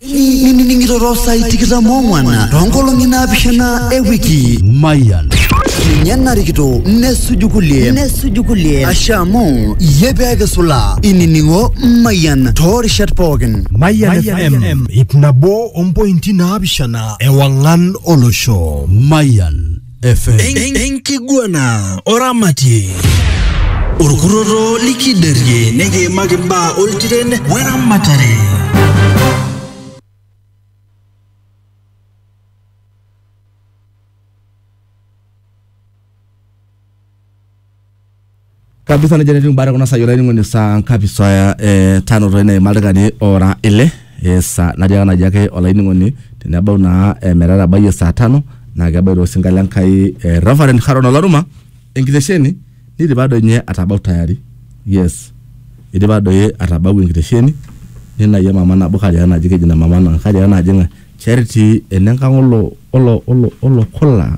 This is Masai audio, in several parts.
nining'iroro saai tikitam ong'wan toonkolong'i naapishana ewiki Mayan. ninye narikito nesuju kulie nesuju kulie ashe amu iyie pee kisula inining'o mayian toorishat pookin Mayan FM, ip nabo ompointi naapishana ewang'an olosho. Mayan FM. En- enkiguana oramatie orkurroto likiderie nikiimaki imbaa oltiren weramatare kabisa nejia netiu imbaa kuna saai olainining'oni saa ngapi saa eh, tano toi neima ildaikani ora ile eh, saa natiaka naji ake olainining'oni tenebau naa eh, metatabayie saa tano naa kebaita osinka le Nkai eh, Reverend Haron Olaruma enkitesheni neidipa doi ninye atabau tayari yes eidipa doi atabau enkitesheni ninayie mama nabo kariaa naji keji ina mama naa kariaa naji ng'ae Charity enenkang olo olo olo olo kola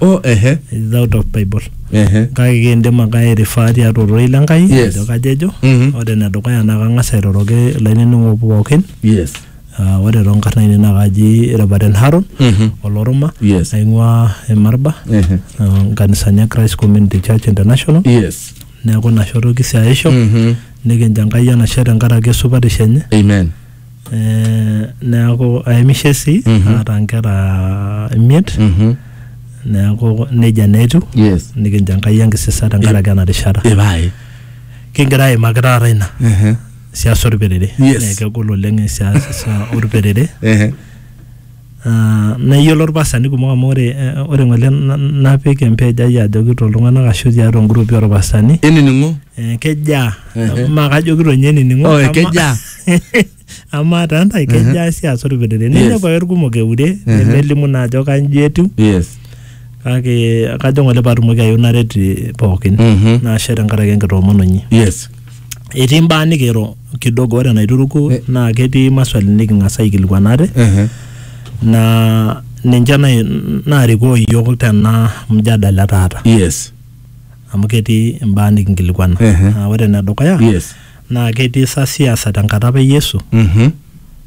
oh ehe is out of bible ehe kake kiindim ake airifaa tiatua ororei le Enkai Yes. ajo kajo ejo Mhm. ore enedukuya naa kang'as airoroki ilainining'ok pookin yes Ah, ore toonkarn ainei naa kaji Reverend Haron Mhm. oloruma Yes. aing'ua Emarba ehe ah, nkanisani e Christ Community Church International yes neeku ina shoto kisiaisho Mhm. nikinjo Enkai enashe tenkaraki esupatisho enye amen Eh, neaku aimishe sii Mhm. aata nkera imiet Mhm. neaku nejia naa etiu Yes. nikincho enkai enkisisa tenkaraki ena rishata Ipae. kigira aimaki taata ina Ehe. siasa orperere Yes. naa kegol oleng siasa orperere Ehe. Ah, neyiolo irpastani kumok amu ore eh, ore ng'ole na- napik empej ai ajoki toltung'anak ashu tiatua ingurupi orpastani inining'o eh, kejaa Ehe. maa kajoki tonye enining'o Oh, eh, ama- kejaa. amaa taa ntae kejaa si aas orpetete Yes. ninepu ake irkumok eure Ehe. nelimu naa ajo kanji etiu yes kake kajo ng'ole paatumoki ayieu naret eh, pookin Mhm. naashe tenkaraki enkitoomononyi yes etii mbaa nikiro kidogo ore enaituruku Eh. naa ketii maswali niking'as aikilikuan ate Ehe. naa ninche nai- naarikoo iyiook tena mjadala taata yes amu ketii imbaa nikinkilikuana Ehe. Naa ore enedukuya yes naa ketii sa siasa tenkata apa e Yesu Mhm.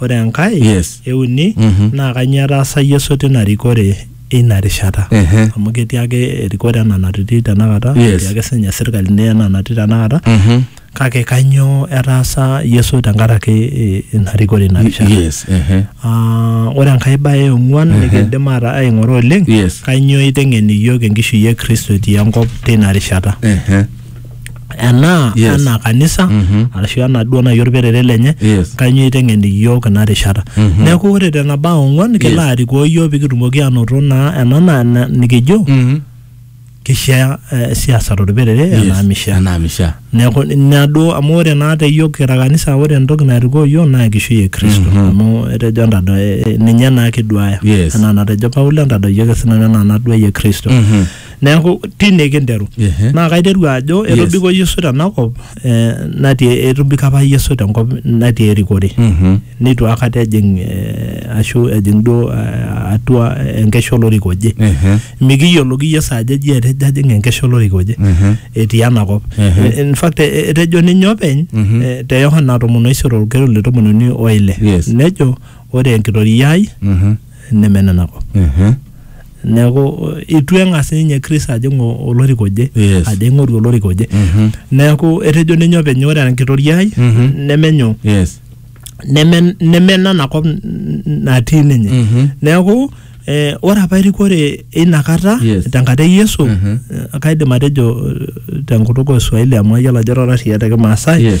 Ore enkae Yes. euni Mhm. naa kanyio etaasa Yesu tina rikore eina rishata Ehe. amu ketii ake erikore ena natitii tenakata Yes. etii ake sinye sirkalini ena natii tenakata Mhm. kake kanyio etaasa Yesu tenkaraki eh, ina rikore ina rishata Yes. Ehe. Ah, ore enkae bae eong'uan Ehe. nikiindim ata aing'ura oleng Yes. kanyio iteng'en iyiook enkishui e Kristo etii enkop tina rishata Ehe. enaa Yes. anaa kanisa Mhm. arashu anaa duo naaji olperere lenye Yes. kanyoo eiteng'en iyiook ina rishata Mhm. neeku ore tena baa ong'uan kelo Yes. arikoo iyiook pikitumoki aanoto naa ena naa na- nikijo Mhm. kishaa eh, siasa tolperere Yes. enaa mishaa Enaa mishaa. neeku ina duo amu ore naa te iyiook kira kanisa ore entoki narikoo iyiook naa enkishui e kristo Mhm. amu etejo entado eh, eh, ninye naa kiduaya Yes. enaa natejo paulo entadoi ake sinanu enaa naduayie kristo Mhm. neeku tine kinteru Ehe. naa kaiteru ajo Yes. etobiko yesu tenakop eh, natii etobiko apa yesu tenkop natii erikore Mhm. neitu akata ejing eh, ashu ejing duo eh, atua enkesha olorika oje Ehe. mikiyioloki yesu ajo eji etejo ajing enkesha olorika oje Ehe. etii enakop Ehe. Eh, in fact eh, etejo ninye openy Mhm. eh, te yohana tomon oisiet olkero le tomon uni oile Yes. nejo ore enkitoria ai Mhm. neme nena kop Mhm. neeku itu eng'as ninye Chris ajing o- olorika oje Yes. ajo aing'oru olorika oje Mhm. neeku etejo ninye openy ore enkitoria ai Mhm. nemenyo Yes. neme neme nana kop n- n- natii ninye Mhm. neeku eh, ore apa erikore eina kata Yes. tenkata e yesu Mhm. eh, kaidim atejo eh, tenkutuk oswahili amu ayiolo ajo rorasiya te kimaasai Yes.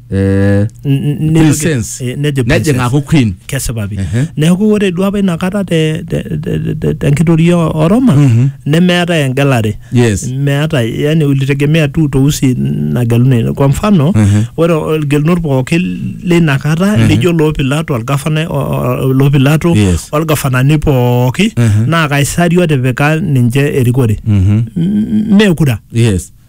eh, N- n- Queen nejo- sense. eh, nejo Queen nejing sense. aaku queen kesipa pi Ehe. neeku ore duo apa inakata te- te- te- te- tenkitoria o Roma Mhm. nemeetae engelare yes meeta yani ulitegemea tu uteusi nageluni kwa mfano Mhm. ore olgelunot pooki leina kata lijo loo pilato olgafana o- o- loo pilato Yes. olgafanani pooki Mhm. naa kaisari otipika ninche erikore Mhm. M- meekura yes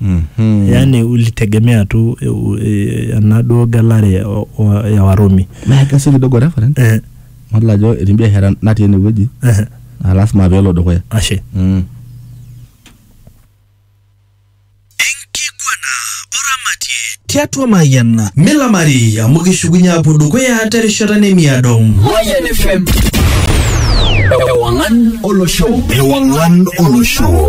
mm -hmm. yani ulitegemea tu e, e, enaduo gelare ya Warumi. Naa kesi kidogo reference eh. Madol ajo etii biashara natii enewueji eh. naa lasima peelo dukuya. Ashe mm. tiatua mayiana milamari amu kishukunye apuo dukuya terishata nemiado Mayian FM Ewangan Olosho Ewangan Olosho